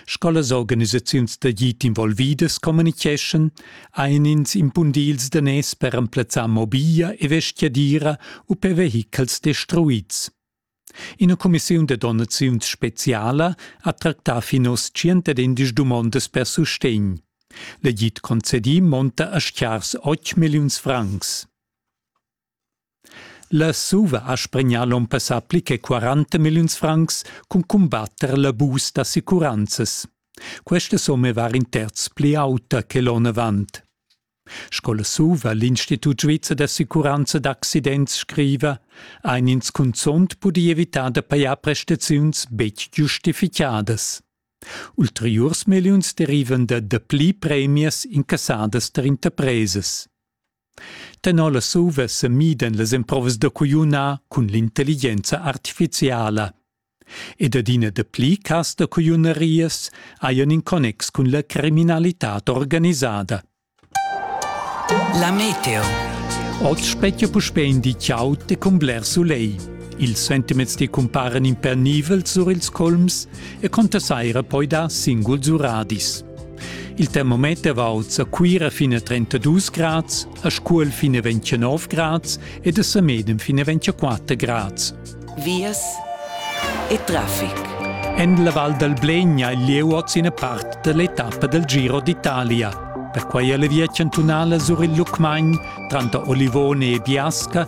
Sco las organisaziuns da git involvidas communiceschan, ein ins impundils daners per emplazzar mobiglia e vestgadira u per vehichels destruids. Ina cumissiun da donaziuns speciala ha tractà fin oz 111 dumondas per sustegn. La GIT concedì monta a schars 8 milliuns francs. La SUVA ha spregnà l'onn passà pli che 40 milliuns francs cun cumbatter l'abus d'assicuranzas. Questa summa var in terz pli auta che l'onn avant. Sco la SUVA, l'Institut svizzer d'assicuranza d'accidents, scriva, ein ins cunzont pudi evitar da pajar prestaziuns betg giustificadas. Ulteriurs milliuns derivan da dapli premias incassadas tar interpresas. Tenor las uva semidan las emprovas da cugliunar cun l'intelligenza artificiala. Ed adina dapli cas da cugliunarias hajan in connex cun la criminalitad organisada. La meteo. Oz spettia puspè in di ciao e cun bler sulegl. Ils sentiments ti cumparan impernivels sur ils colms e conta saira poi dar singuls uradis. Il termometer valsa Cuira fin a 32 grads, a Scuol fin a 29 grads ed a Samedem fin a 24 grads. Vias e traffic. En la Val dal Blegna il lieu ina part dall'etappa dal Giro d'Italia. Perquai è la via chantunala sur il Lucmagn tranter Olivone e Biasca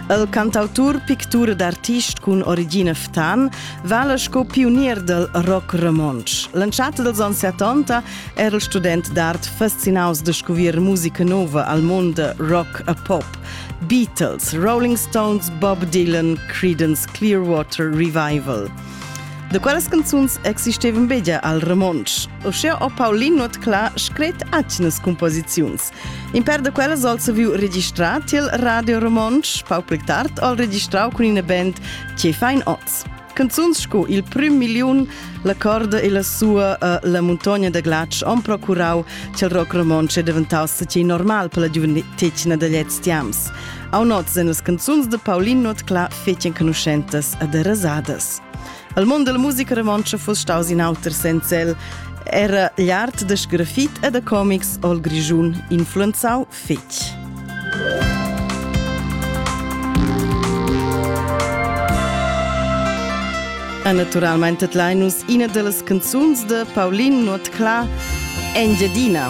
Il cantautur, pictur ed artist cun origina ftan vala sco pionier dal rock romontsch. L'entschatta dels anns 70 era il student d'art fascinaus de scovier musica nova al mondo rock e pop. Beatles, Rolling Stones, Bob Dylan, Creedence Clearwater Revival. De quelles canzuns existevan begia al romontsch. O scheo o Paulin not cla scret atgnas composiziuns. In per da quellas al saviu registrar tiel Radio Romontsch, pau pli tard al registrau cun ina band Che fein oz. Canzuns sco Il prim miliun, La corda e la sua, uh, La muntogna da glatsch han procurau ch'il rock romontsch è daventau stati normal per la giuventetgna da lez tiams. Au noz en las canzuns de Pauline Notcla fetien conoscentas e de rasadas. Il mund della musica romontscha fuss staus in auter senza el. Era l'art da sgrafit e da comics ol Grischun influenzau fetg. E naturalmente tlai nus ina dellas canzuns de Paulin Nuotclà, Engiadina.